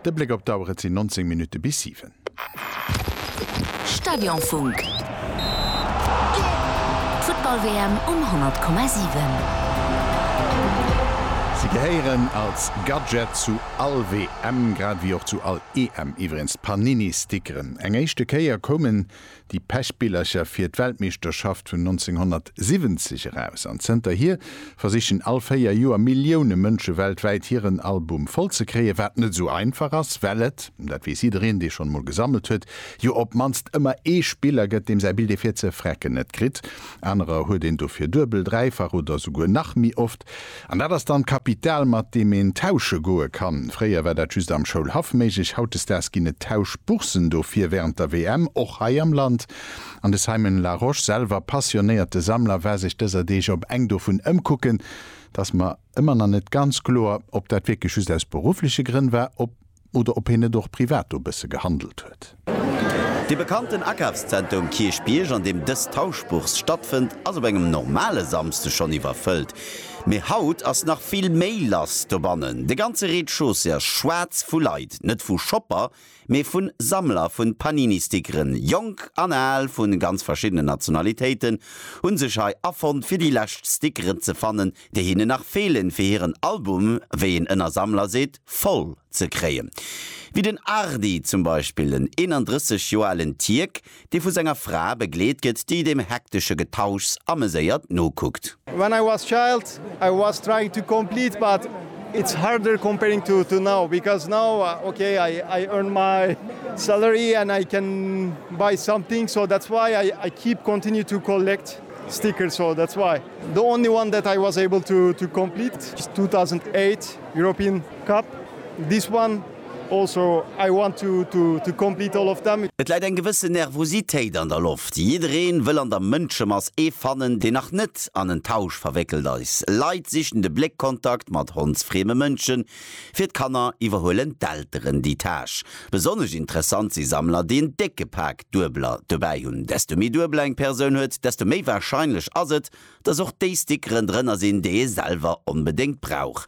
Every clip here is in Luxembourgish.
De Bléck op d'Auer, et sinn 19 Minutte bis 7. Stadionfunk, d'Futtball-WM um 100,7. Si gehéieren als Gadget zu all WM, grad ewéi och zu all EM iwwregens d'Panini-Stickeren. Eng éischte Kéier koumen déi Pechbillercher fir d'Weltmeeschterschaft vun 1970 eraus an zënterhier versichen all véier Joer Millioune Mënsche weltwäit hiren Album voll ze kréien, wat net esou einfach ass, well et, dat weess jiddereen, dee schonn emol gesammelt huet, jo op d'mannst ëmmer ee Spiller gëtt, deem säi Bild ee fir ze frecken net kritt. Anerer huet een dofir duebel, dräifach oder esouguer nach méi oft. An dat ass dann d'Kapital, mat deem een tausche goe kann. Fréier war dat just am Schoulhaff méiglech. Hautdesdaags ginn et Tauschboursen dofir wärend der WM, och hei am Land. An de Simon Larosche, selwer passionéierte Sammler, war sech dëser Deeg op eng dovun ëmkucken. 't ass mer ëmmer nach net ganz kloer, ob dat wierklech just aus beruffleche Grënn war, ob. Oder ob hien net och privat do bësse gehandelt huet. De bekannten Akafszenter um Kierchbierg, an deem dës Tauschbourse stattfënnt, ass op engem normale Samsde schonn iwwerfëllt. Mee haut ass nach vill méi lass dobannen. De ganze Rez-de-chaussée ass schwaarz vu Leit. Net vu Shopper, mee vu Sammler vun Panini-Stickeren. Jonk an al, vu ganz verschiddenen Nationalitéiten, hu sech hei afonnt, fir déi lescht Stickeren ze fannen, déi hinnen nach feelen, fir hiren Album, wéi een ënner Sammler seet, voll ze kréien. Wéi den Ardi zum Beispill, en 31 Joer alen Tierk, dee vu senger Fra begleet gëtt, déi deem hektesche Getauschs ameséiert nokuckt. When I was child I was trying to complete but it's harder comparing to to now because now ok I I earn my salary and I can buy something so that's why I I keep continue to collect stickers so that's why. The only one that I was able to to complete 2008 European Cup this one also I want to to to complete all of them. Et läit eng gewësse Nervositéit an der Loft. Jiddereen wëll an der Mënschemass ee fannen deen nach net an en Tausch verwéckelt eis. Leit sichen de Bléckkontakt mat hondsfrieme Mënschen. Fir d'Kanner iwwerhuelen d'Elteren déi Tâche. Besonnesch interessant si Sammler deen décke Pak. Duebeler dobäi hunn. Desto méi Duebeler eng Persoun huet, desto méi warscheinlech ass et, dass och déi Stickeren drënner sinn, déi ee selwer onbedéngt brauch.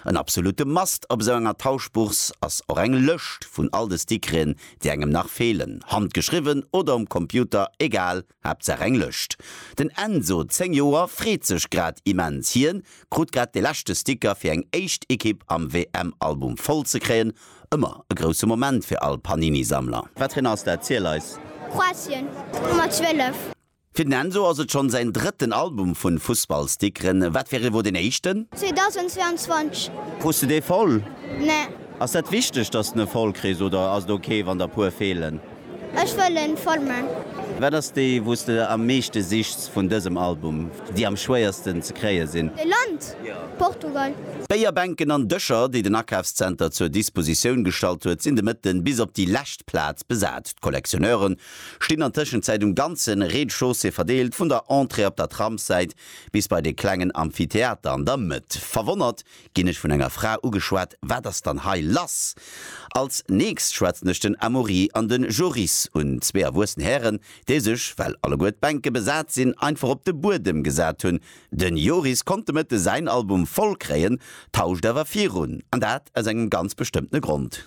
En absolutte Must op esou enger Tauschbourse ass och eng Lëscht vun all de Stickerin, déi engem nach feelen, handgeschriwwen oder um Computer, egal, Haaptsaach eng Lëscht. Den Enzo, 10 Joer, freet sech grad immens. Hien krut grad de leschte Sticker fir eng éischt Ekipp am WM-Album voll ze kréien Ëmmer e grousse Moment fir all Panini-Sammler. Watreen ass dat? Ziel eis! Kroatien, Nummer 12. Fir den Enzo ass et schonn säin drëtten Album vun Fussballstickeren. Wat fir ee wor deen éischten? 2022. Krus de dee voll? Nee. Ass dat wichteg, dass de ne voll kriss oder ass et ok wann der puer feelen? Ech wëllen Formen. Wat ass déi wou s de am meeschte sichs vun dësem Album, déi am schwéiersten ze kréie sinn? E Land, Portugal. D'Béierbänken an Dëscher, déi den Akafszenter zur Dispositioun gestallt huet, sinn de Mëtte bis op déi lescht Plaz besat. D'Collectionneure stinn an Tëschenzäit um ganze Rez-de-chaussée verdeelt, vun der Entrée op der Tramssäit bis bei de klengen Amphitheater an der Mëtt. Verwonnert ginn ech vun enger Fra ugeschwat, Wat ass dann hei lass? Als nächst schwätzen ech den Amaury an den Joris un, zwee erwuessen Hären, déi sech, well alleguer d'Bänke besat sinn, einfach op de Buedem gesat hunn. Den Joris konnt de Mëtte säin Album voll kréien, tauscht awer virun, an dat aus engem ganz bestëmmtene Grond.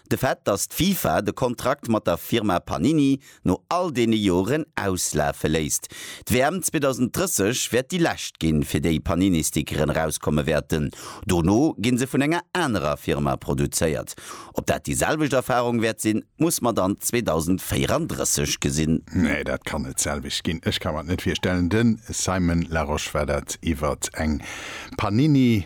De Fait, datt d'FIFA de Kontrakt mat der Firma Panini no all deene Joren auslafe léisst. D'WM 2030 wäert déi lescht ginn, fir déi Panini-Stickeren erauskomme wäerten. Dono gi se vun enger anerer Firma produzéiert. Ob dat déi selwecht Erfarung wäert sinn, muss mer dann 2034 gesinn. Nee, dat kann net d'selwecht ginn. Ech ka mer et net virstellen. De Simon Larosche war dat iwwert eng Panini